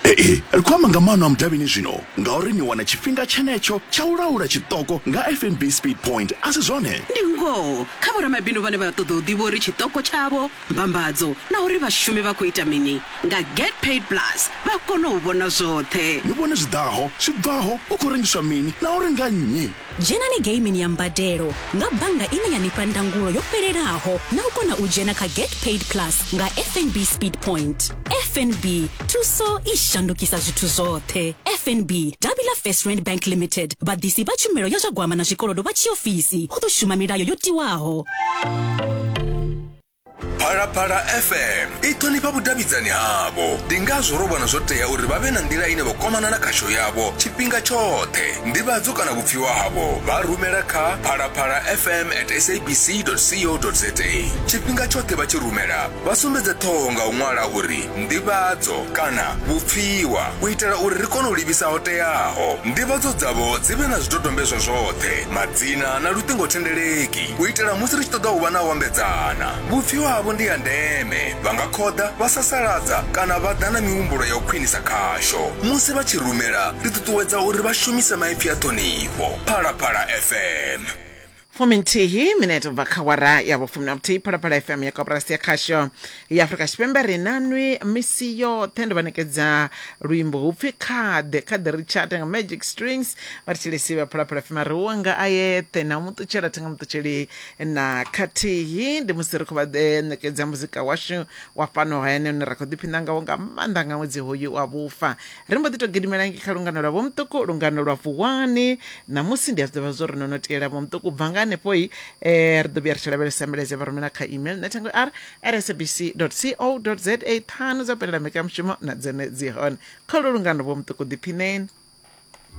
ee ri khou amba nga maano a mudavhini zwino ngauri ni wana tshifhinga tshenetsho tsha u laula tshiṱoko nga fnb speed point a si zwone ndi ngoho kha vhoramabindu vhane vha ṱoḓa u ḓivha uri tshiṱoko tshavho mbambadzo na uri vhashumi vha khou ita mini nga get paid plus vha kona u vhona zwoṱhe ni vhone zwi ḓaho zwi bvaho u khou rengiswa mini na uri nga nnyi Dzhenani geimini ya mbadelo nga bannga ine ya ni fha ndangulo yo fhelelaho na u kona u dzhena kha Get Paid Plus nga FNB Speed Point. FNB, thuso i shandukisa zwithu zwoṱhe. FNB, davhi ḽa First Rand Bank Limited, vhaḓisi vha tshumelo ya zwa gwama na zwikolodo vha tshiofisi, hu ḓo shuma milayo yo tiwaho. phalaphala fm i ṱhonifha vhudavhidzani havho ndi ngazwo ro vhona zwo tea uri vha vhe na nḓila ine vha kwamana na khasho yavho tshifhinga tshoṱhe ndivhadzo kana vhupfiwa havho vha rumela kha phalaphala fm at sabc co za tshifhinga tshoṱhe vha tshi rumela vha sumbedze ṱhoho nga u ṅwala uri ndivhadzo kana vhupfiwa u itela uri ri kone u livhisa ho teaho ndivhadzo dzavho dzi vhe na zwidodombedzwa zwoṱhe madzina na luṱingothendeleki u itela musi ri tshi ṱoḓa u vha na u ambedzana vhupfiwa havho ndi ya ndeme vha nga khoḓa vha sasaladza kana vha ḓa na mihumbulo ya u khwinisa khasho musi vha tshi rumela ri ṱuṱuwedza uri vha shumise maipfi a ṱhonifho phalaphala fm fuminthihi minete ubva kha wara ya vhufumi na vhuthihi phalaphala fm ya koporasi ya khasho ya afurika tshipembe ri na nwi misi yoṱhe ndi vha nekedza luimbo hupfi khaḓe khaḓe ri tshata nga magic strings vha ri tshilesi vha phalaphala fema ri wa nga a yeṱhe na muṱutshela thenga muṱutsheli na khathihi ndi musi ri khou vha eh, ṋekedza muzika washu wa fhano hayani une ra khou ḓiphina ngawo nga maanḓa nga ṅwedzi hoyu wa vhufa ri mbo ḓi tou gidimela ngi kha lungano lwa vhomuṱuku lungano lwa vuwani ṋamusi ndi a zwi ḓivha zwo ri no no tiela vhomuṱuku bva nga hanefhoi eh, ri ḓo vhuya ri tshi lavhelesa mbilaedza vha rumela kha email netangor rsabc co za ṱhanu dza bvelela mbekanyamushumo na dzone dzi hone kha lu lungano vho muṱuku ḓiphineni